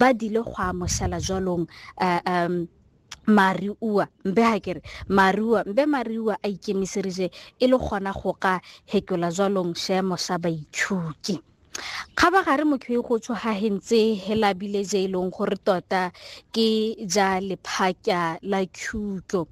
ba dile go a mošala jwalong um mariua mbe ha kere mariua mbe mariua a ikemiseritše e le gona go ka hekola jwalong seemo sa baithuti kgabagare motho e go tsho ga hentse helabile je e leng gore tota ke ja lephaka la thuto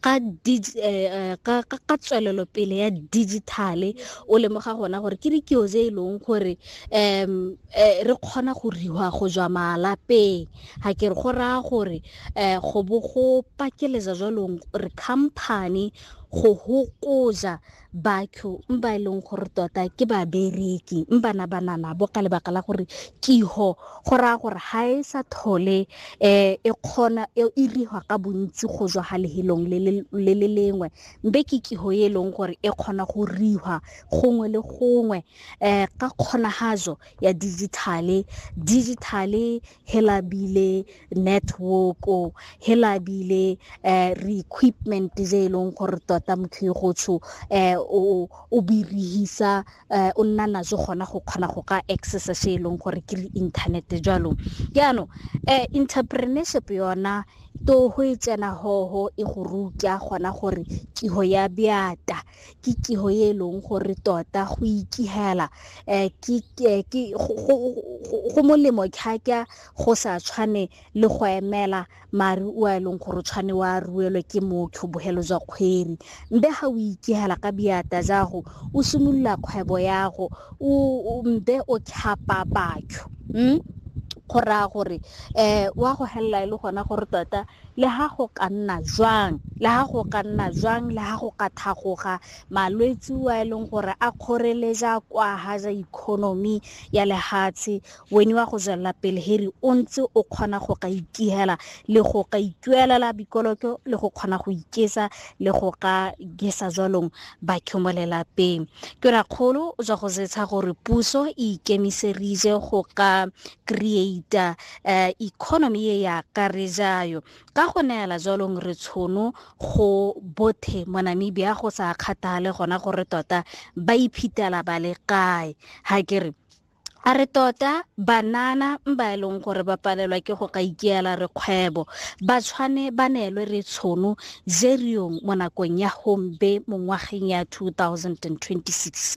ka tswelelopele ya digital-e o lemoga gona gore ke dikeo tse e leng gore um re kgona go riwa go jwa malapeng ga ke re go raya gore um go bo go pakeletsa jwalong re company go hokoja batho ba e leng gore tota ke babereki bana banana bo ka lebaka la gore kiho go raya gore ga e sa thole um e kgona e iriwa ka bontsi go jwa ga lehelong le le lengwe mbe ke kiho e leng gore e kgona go riwa gongwe le gongwe um ka kgonagajo ya digitale digitale he labile network-o he labile um re-equipment je e leng gore tota motho e gotsho um o birihisa um o nna najo gona go kgona go ka accessa se e leng gore ke le internet jalo jaanong um entrepreneurship yona to go e tsena hoho e go ruta gona gore tiho ya beata ke kiho e e leng gore tota go ikihela um go molemo kgaka go sa tshwane le go emela mare o a e leng gore o tshwane wa ruelwe ke motho bogelo jwa kgweri mbe ga o ikihela ka biata jago o simolola kgwebo yago mbe o tlhapa batho um go raya gore um wa go helela e le gona gore tota Le ha go ka nna jwang, le ha go ka nna jwang, le ha go ka thagoga malwetsi wa e leng gore a kgoreleja kwa haja economy ya lehatshe, weni wa go jwelela pele heri o ntse o kgona go ka ikihela le go ka ituelela bikoloko le go kgona go ikesa le go ka gesa jwalong batho mo lelapeng. Ke rakgolo jwa go zetsha gore puso e ikemiserije go ka creator um economy ye ya ka re jayo ka go neela jalong re tshono go bothe mo namibia go sa kgathale gona gore tota ba iphetela ba le kae ga ke re a re tota banana ba e leng gore ba palelwa ke go ka ikeela re kgwebo ba tshwane ba neelwe re tshono jeriong mo nakong ya hombe mo ngwageng ya 2026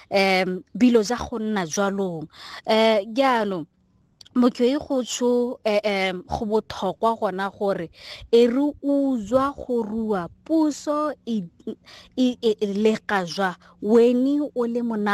um bilo ja go nna jwalong um jaanong motho e go tsho um go botlhokwa gona gore e re utswa go rua puso e, e, e, e lega jwa weni o le mona